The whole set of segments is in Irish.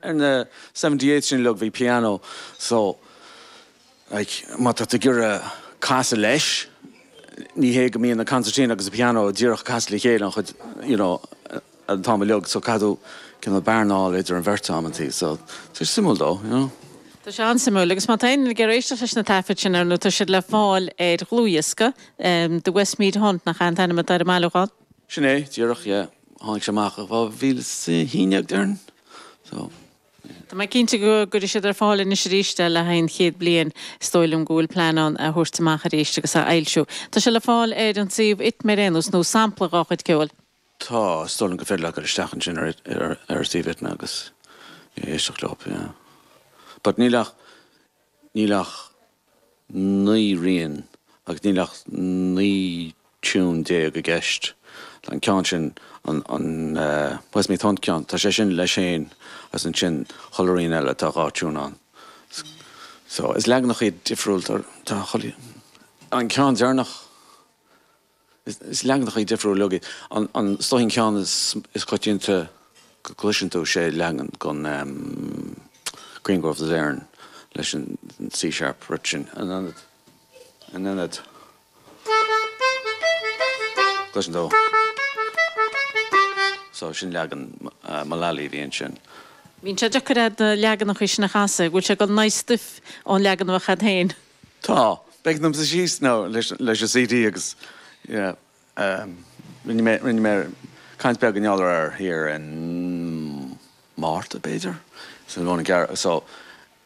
Ar na Seventy Eight sin uilig bhí pianó so like má tá tú ag iarraidh casadh leis ní hé go mbíonn an concertina agus an pianó díreach ag casadh le chéile an chuid you know an t-am uilig so caithfidh tú cineál bearnáil idir an bheirt amantaí so tá sé suimiúil dó you know. Tá sé an-suimiúil agus má tá éinne ag iarraidh éisteacht leis na taifid sin ar ndóigh tá siad le fáil ar dhlúthdhiosca, em, The Westmeath Hunt nach ea an t-ainm atá ar an mbailiúchán? Sin é, díreach, yeah. Tháinig sé amach i 2011, déarfainn. So, yeah. Tá mé cinnte go gcuirfidh siad ar fáil anois arís é le haghaidh an chéad bliain. Is dóigh liom go bhfuil plean ann é a thabhairt amach arís agus a fhoilsiú. Tá sé le fáil ar an suíomh ITMA ar aon nós, nó sampla dhá chuid ceoil. Tá, is dóigh liom gur féidir leat cur isteach ansin ar, ar, ar suíomh ITMA agus éisteacht leo, yeah. But níl ach. Níl ach naoi rian agus níl ach naoi tiún déag i gceist. Tá an ceann sin, an Westmeath Hunt ceann, tá sé sin leis féin agus ansin chuile rian eile tá dhá tiún ann. So, is leaganacha iad difriúil, tá an ceann deireanach Is leaganacha difriúla iad, like, is dócha an ceann is coitianta, go gcloiseann tú, sé leagan den Green Groves of Erin leis an C-sharp rite sin in ionad, in ionad, gcloiseann tú, so sin leagan Mullally a bhí ansin. Bíonn sé deacair agat na leaganacha sin a chasadh, go bhfuil sé go naoi stuif ón leagan a bheadh agat féin. Tá. B'éigean dom suí síos nó leis an CD agus rinne mé rinne mé caint beag i ngeall air thiar i Márta, b'fhéidir? Sin rud na gear so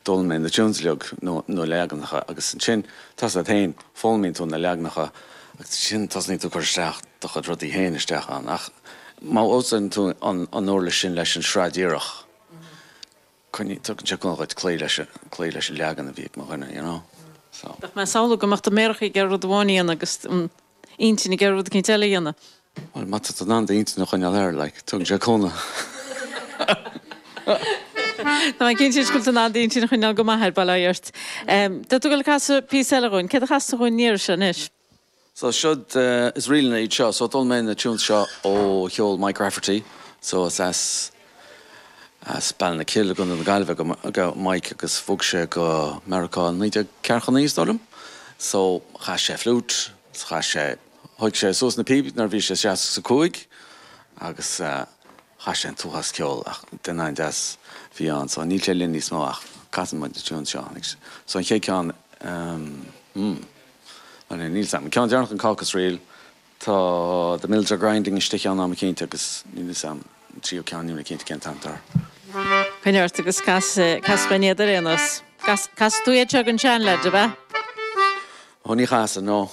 d'fhoghlaim mé na tunes uilig nó na leaganacha agus ansin tá a fhios agat féin, foghlaimíonn tú na leaganacha agus ansin tosnaíonn tú ag cur isteach do chuid rudaí féin isteach ann ach má usáideann tú an uirlis sin leis an sraith díreach, cineál, tugann sé cúnamh dhuit cloí leis, cloí leis an leagan a bhí ag mo dhuine, you know, so. Bheadh mé ag samhlú go mbeadh do mhéaracha ag iarraidh rud amháin a dhéanamh agus an intinn ag iarraidh rud éicint eile a dhéanamh. Bhuel, má tá tú in ann d'intinn a choinneáil air, like, tugann sé cúnamh. Tá mé cinnte go bhfuil tú in ann d'intinn a choinneáil go maith air, bail ó Dhia ort. Tá tú ag dul ag casadh píosa eile dhúinn. Céard a chasfas tú dhúinn an iarraidh seo anois? So siod is ríleanna iad seo. So d'fhoghlaim mé na tunes seo ó cheol Mike Rafferty. So is as as Ballinakill i gContae na Gaillimhe do do Mike agus bhog sé go Meiriceá i naoi déag ceathracha naoi is dóigh liom. So chas sé flute, is chas sé, thóg sé suas na píobaí nuair a bhí sé seasca is a cúig agus chas sé an t-uafás ceoil ach duine an-deas a bhí ann. So níl sé linn níos mó ach casann muid na tunes seo anois. So an chéad ceann, hmm. Ó níl, níl, 's am. Ceann deireanach an Caucus Reel. Tá The Mills Are Grinding istigh i gceann acu cinnte agus níl, 's am, an tríú ceann níl mé cinnte cén t-ainm atá air. Coinnigh ort agus cas, cas leat iad ar aon nós. Cas, casann tú iad seo ag an seanleaid, ab ea? Ó ní chasann, no.